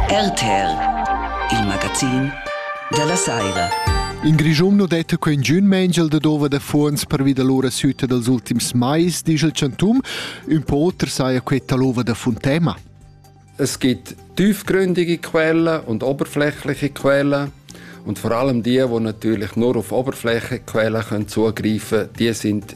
RTL, il magazin dalla saira. In Grischun nu detta que ingün mengel da dova da fuonds pervi da l'ura süta dals ultims mais, disch il Chantum. Ün po oter saja queta l'ova da Funtema. Es gibt tiefgründige Quellen und oberflächliche Quellen. Und vor allem die, die natürlich nur auf Oberfläche Quellen können zugreifen können, die sind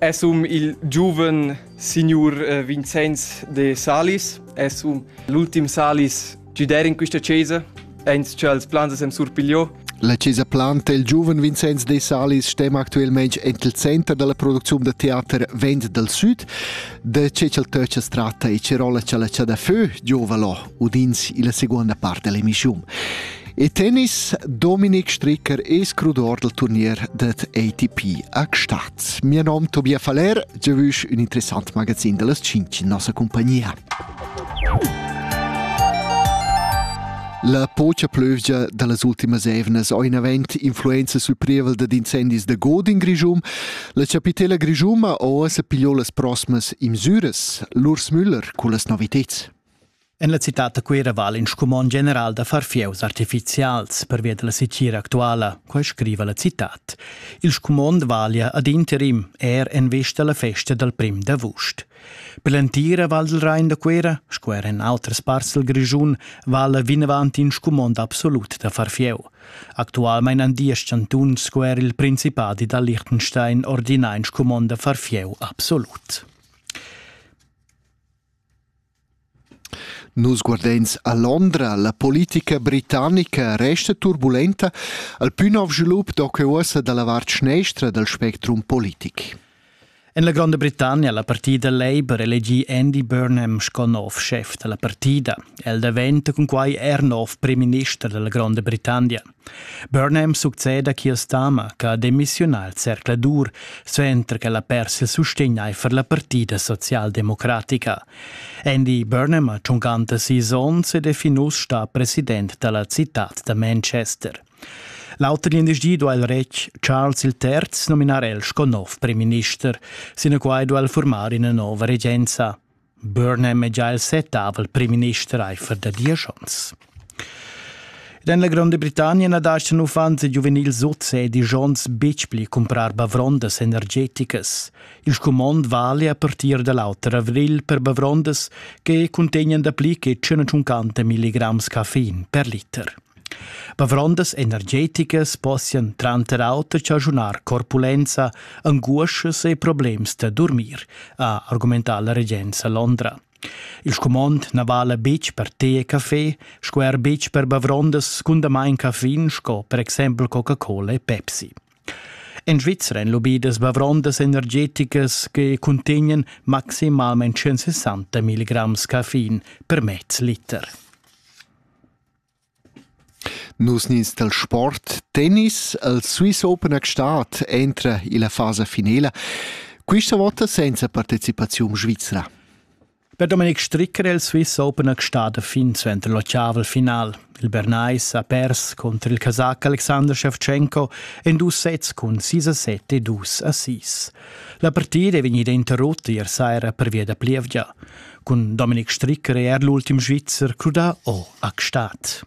Es um il giuven signur eh, Vincenz de Salis. Es um l'ultim Salis giuder in questa chesa. Eins che als plans sem surpigliò. La Chiesa Planta il giuven Vincenz de Salis stem actualmente el center della produzione de teater Vent del Sud. De ce ch'el töcha strata e cerola c'è la c'è da fö giovalo. udins illa seguonda part dell'emissiun. E tennis, Dominik Stricker è scrudor del turnier det ATP a Gstatt. Mio nom Tobias Faller, je vush un interessant magazin dellas cinc in nossa compagnia. La pocha plövgia da las ultimas evnas ho inavent influenza sul prievel dad incendis da god in Grischum. La chapitela grischuma ho sa pigliò las prosmas imsüras, l'Urs Müller culla noviteds. En la citad da Cuira vala in scumond general da far fieus artifizials pervia dalla setgira actuala, quai scriva la citad. Il scumond valia ad interim er en vista alla festa dal prim d'avust. Per l'entira Val del Rain da Cuira, sco er en outras parts del Grischun, vala vinavant in scumond absolut da far fieu. Actualmein an diesch chantuns sco er il Principadi da Liechtenstein ordina in scumond da far fieu absolut. Nus guardeins a Londra. La politica britannica resta turbulenta al pü nov svilup do que uossa dalla vart schnestra dal spectrum politic. En la Gronda Britannia la partida Labour elegi Andy Burnham sco nov chef da la partida. El daventa cun quai er nov prim minister da la Gronda Britannia. Burnham succeda Keir Starmer che ha demissiunà al zercladur suenter ch'el ha pers il sustegn aifer la partida socialdemocratica. Andy Burnham ha tschuncanta sis onns ed è fin uss stà president da la citad da Manchester. L'auter glindesdi duai il retg Charles III nominar el sco nov premierminister, sinaquai duai el formar ina nova regenza. Burnham è già il settavel primminister aifer da diesch onns. En la Gronda Britannia na dastgan uffants e giuvenils oz e disch onns betg pli cumprar bavrondas energeticas. Il scumond vale a partir da l'auter avrigl per bavrondas che cuntegnan dapli che 150 mg caffein per liter. Bavrondas energeticas possian tranter auter chaschunar corpulenza, anguoschas e problems da durmir, ha argumentà la regenza Londra. Il scumond na vala betg per tè e café, sco er betg per bavrondas scundamain caffein sco per exempel Coca-Cola e Pepsi. En Svizzera èn lobidas bavrondas energeticas che cuntegnan maximalment 160 milligramm caffein per mez liter. Nus nins dal sport tennis al Swiss Open a Gstaad entra illa fasa finela quista vota senza partecipaziun svizra. Per Domenic Stricker è il Swiss Open a Gstaad fin suenter l'ottaval final. Il Bernais ha pers contro il Casach Alexander Shevchenko en dus sets cun 6 a 7 e 2 a 6. La partida è vegnida interrotta ier saira pervia da plievgia. Cun Dominik Stricker è er l'ultim Svizzer crudà o a Gstaad.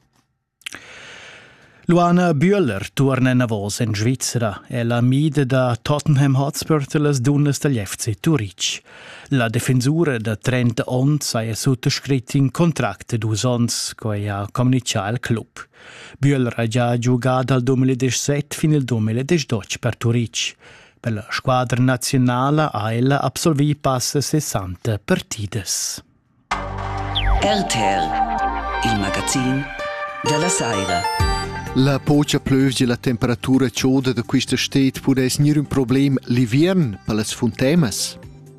Luana Bühler turna enavos en Svizzera è la mide da Tottenham Hotspur per las dunnas dagl FC Turitg. La defensura da 30 onns ha suttascrit in contract de dus onns, quai ha communicà il club. Bühler ha già giugà dal 2017 fin al 2018 per Turitg. Per la squadra naziunala ha ella absolvì passa 60 partidas. RTL, il magazin della Saira. La pocha plövgia la temperatura choda da quista sted pudess gnir ün problem l'ivern per las funtemas?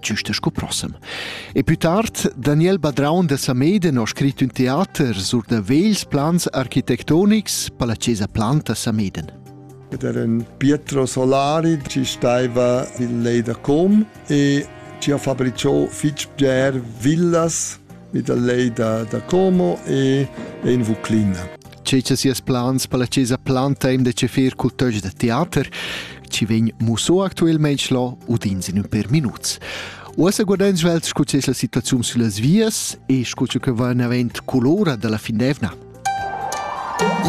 giusta sco prossem. E più tard, Daniel Badraun da Sameden ha scrit un teater sur da vegls plans architectonics per la Chiesa Planta Sameden. Ed era un Pietro Solari ci stava il lei da Com e ci ha fabbricò fitch bger villas vi da lei da, da Como e, e in Vuclina. C'è c'è sias plans per la Cesa Planteim de Cefir Cultöge de Theater, ci vegn muso actualmente lo udins in un per minuts. Uossa guardan svelt scu c'è la situazione sulle vias e scu che va in avent colora della Findevna.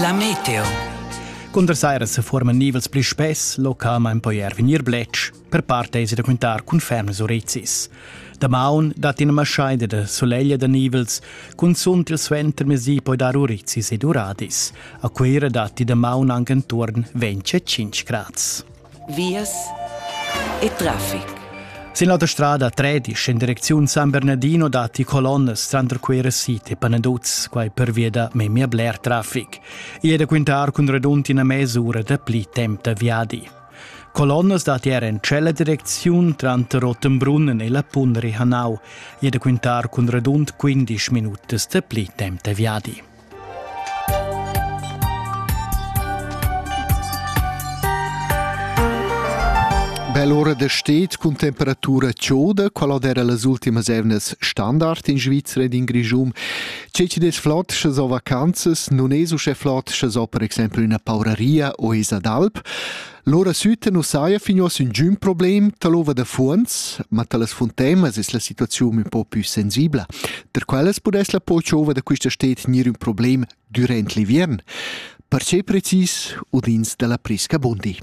La meteo. Cunter saira se forman nivels pli spess, localmain poi er vegnir bletsch. Per part esi da quintar cun fermas orezis. Damaun dat ina maschaida da soleglia da nivels, cunzunt il suenter mesi poi dar orezis ed uradis. A Cuira datti damaun anche intorno 25 gradi. Vias e traffic. Sin l'auta strada 13 in direczione San Bernardino datti colonnes tranter Cuira City e Panaduz, quai per via da memia bler traffic. E da quintar cun redund ina mesura da pli temp da viadi. Colonnas dat er en tschella direcziun tranter Rottenbrunnen e la Punri Hanau, jeda quintar cun redund 15 minutas de pli temp de viadi. Bell'ora de stet cun temperatura chioda, qual era las ultimas evnas standard in Svizzera ed in Grigium, Tgei chi'd es flot sche so vacanzas non es uschè flot sche so per exempel üna pauraria o esa d'alp. Lura süta nu saja fin uoss üngün problem ta l'ova da fuonz, ma ta las funtemas es la situaziun ün po pü sensibla. Per quellas pudess la pochova da quista sted gnir ün problem durant l'inviern. Perche precis udins da la Prisca Bundi.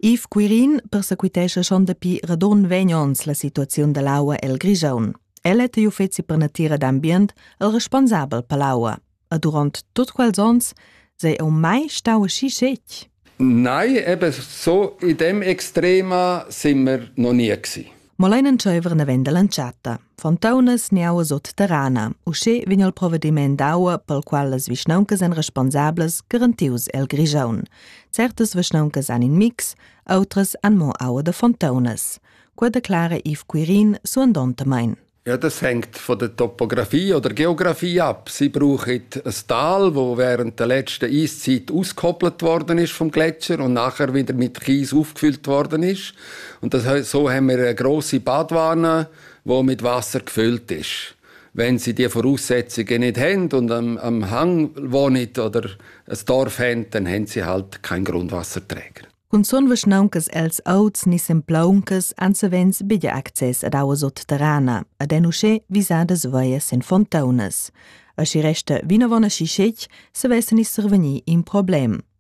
Yves Quirin persequitescha schon dapi radon vegn ons la situaziun dall'aua el Grigiun. El è igl uffeci per natira d'ambient el responsabel per l'aua. E durant tutt quels ons sei eu mai stau aschi scetg? Nein, eben so in dem extrema sind wir noch nie gewesen. mo lein entscheiver naven dall'entschatta. Fontaunas niauas terrana, uschè vegn il provvediment d'aua pel qual las vischnauncas èn responsablas garantius el Grigiaun. Certas vischnauncas han in mix, outras han mo aua da fontaunas. Quella declara Yves Quirin suandontamain. Ja, das hängt von der Topografie oder Geografie ab. Sie brauchen ein Tal, wo während der letzten Eiszeit ausgekoppelt worden ist vom Gletscher und nachher wieder mit Kies aufgefüllt worden ist. Und das, so haben wir eine grosse Badwanne, die mit Wasser gefüllt ist. Wenn sie die Voraussetzungen nicht haben und am, am Hang wohnen oder ein Dorf haben, dann haben sie halt keinen Grundwasserträger. Cun sun vischnauncas els auts ni semplauncas ansavens biglia access ad aua sotterrana, ad en uschè visadas veias en fontaunas. A si resta vinavon a si scec, se vessen is survegni in problem.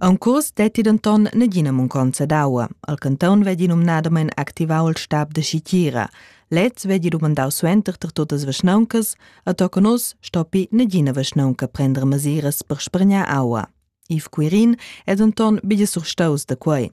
Aunc curs detti denton nagina munconza d'aua. Al canton vegli numnadamein activau il stab da schitgira. Lez vegli dumandau suenter per tuttas vischnauncas, a toca nus stoppi nagina vischnaunca prender mesiras per spregnar aua. Yves Quirin è denton bia surstaus da quei.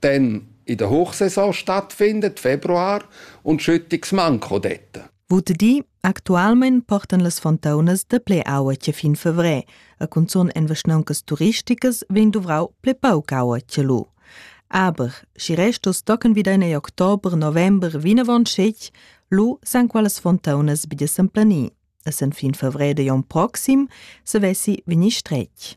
Dann in der Hochsaison stattfindet Februar und Schüttungsmanko detta. Vut di, actualmein portan las fontaunas da ple aua che fin fevrè, a cunzun en vaschnauncas turisticas vegn duvrau ple pauc aua che lu. Aber, si restos tocan wieder in october, november vinavon schec, lu san qualas fontaunas bi de semplani. A sen fin fevrè de jon proxim se vessi veni strec.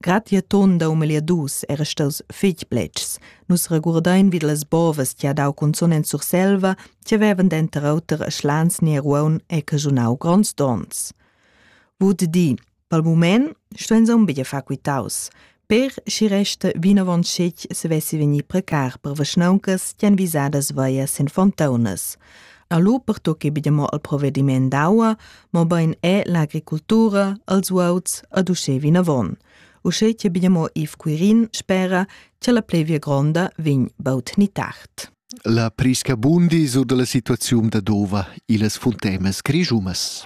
Grazia ton da um omagliadus era staus fetg pletgs. Nus regurdein vid las bovas che ha dau cunzun en Surselva, che vevan denter auter a Schlans ni a Ruaun e cajunau gronds donns. Vud di, pel mument stuein aunc buca far quitaus. Per schi resta vinavon scetg se vessi vegnir precar per vaschnauncas che han visadas vaia sin fontaunas. Alu pertucchi be mo al provvediment d'aua, mobein è l'agricultura, els uauts ad uschè vinavon. Uschè che be mo Yves Quirin spera che la plevia gronda vegn baut ni tard. La prisca bundi sur dalla situaziun da Dova illas funtemas grischumas.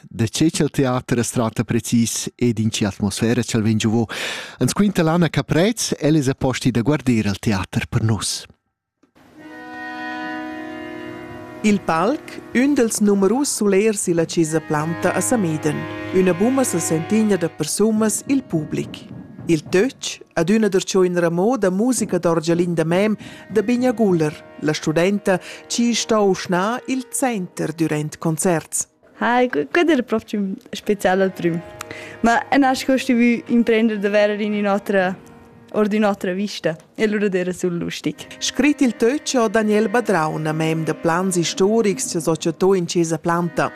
da che ch'el teater as tratta precis ed in che atmosfera ch'el vegn giovò. Ans quinta Lana Caprez, el es a posti da guarder al teater per nus. Il palc, ün dels numerus sulers illa chesa Planta a Samiden, üna buma sa sentigna da persunas il public. Il töch, ad üna der choin ramò da musica d'orgialin da mem da Bigna Guller, la studenta, chi sta uschna il center durant concerts. Hi, quella era proprio speciale al prüm. Ma a nasc ho stuvü imprender da verer in ün'otra or d'ün'otra vista e lura d'eira sul lustig. Scrit il töch ho Daniel Badraun, mem da plans istorics, cha societò in chesa Planta.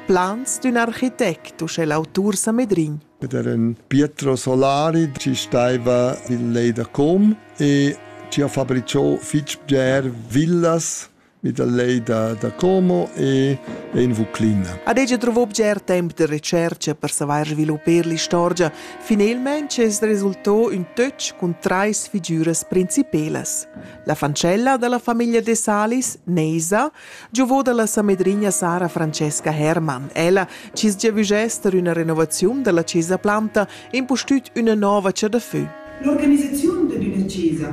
Plans d'ün architect, uschè l'autur Samedrin. Ed era un Pietro Solari ci staiva il lei da Com e ci ha fabricò fitg bger villas mi dal lei da, da Como e, e in Vuclina. Ad ella trovò bger temp de recerca per savair sviluppar l'istorgia. Finalmente es resultò un töch cun trais figüras principelas. La fancella della famiglia de Salis, Neisa, giovò dalla samedrigna Sara Francesca Hermann. Ella cis giavügess ter una renovaziun della cesa planta e impustüt una nova cha da fö. L'organizzazione di una cesa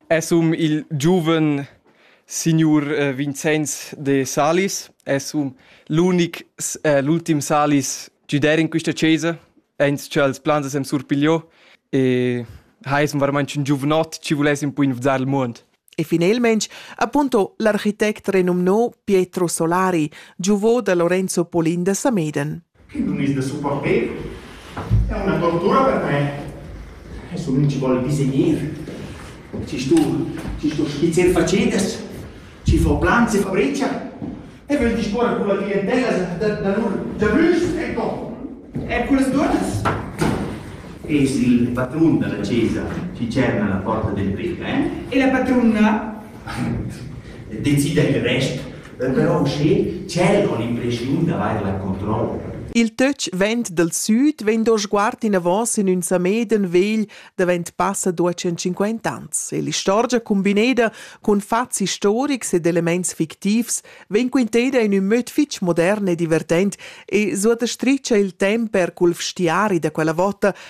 Es um il giuven signur eh, Vincenz de Salis, es um l'unic, eh, l'ultim Salis giuder in quista chesa, aint cha els plans sem surpigliò e ha es veramente un giuvenot ci vulessem poi infuzar il mond. E finalmente, appunto, l'architect renumnò Pietro Solari, giuvo da Lorenzo Polin da Sameden. Che nun es da supporter? È üna tortura per me. Adesso nun ci vuole disegner. Ci sto, ci sto skizzer facedas, ci fo planze fabreccia e voul disporre con la clientela da, da lur giabrüschs e co. E quelles duas? Es il patrun della chiesa chi cerna la porta del brick, eh? E la patruna? Decida il rest. però uschè tschel con l'impreschiun d'avair la controlla. Il töch vent dal süd vegn do sguard inavos in ün Sameden vegl davent passa duecentcinquant ans e l'istorgia cumbineda cun fats istorics ed elements fictivs vegn quinteda in ün möd fich modern e divertent e suottastricha il temp per cul vstiari da quella vota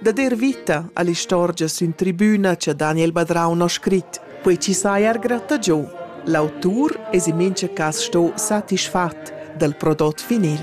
da der vita all'istorgia sün tribüna cha Daniel Badraun ho scrit, quei chi saja er gratta giò. L'autur es in mincha cas sto satisfat dal prodot finil.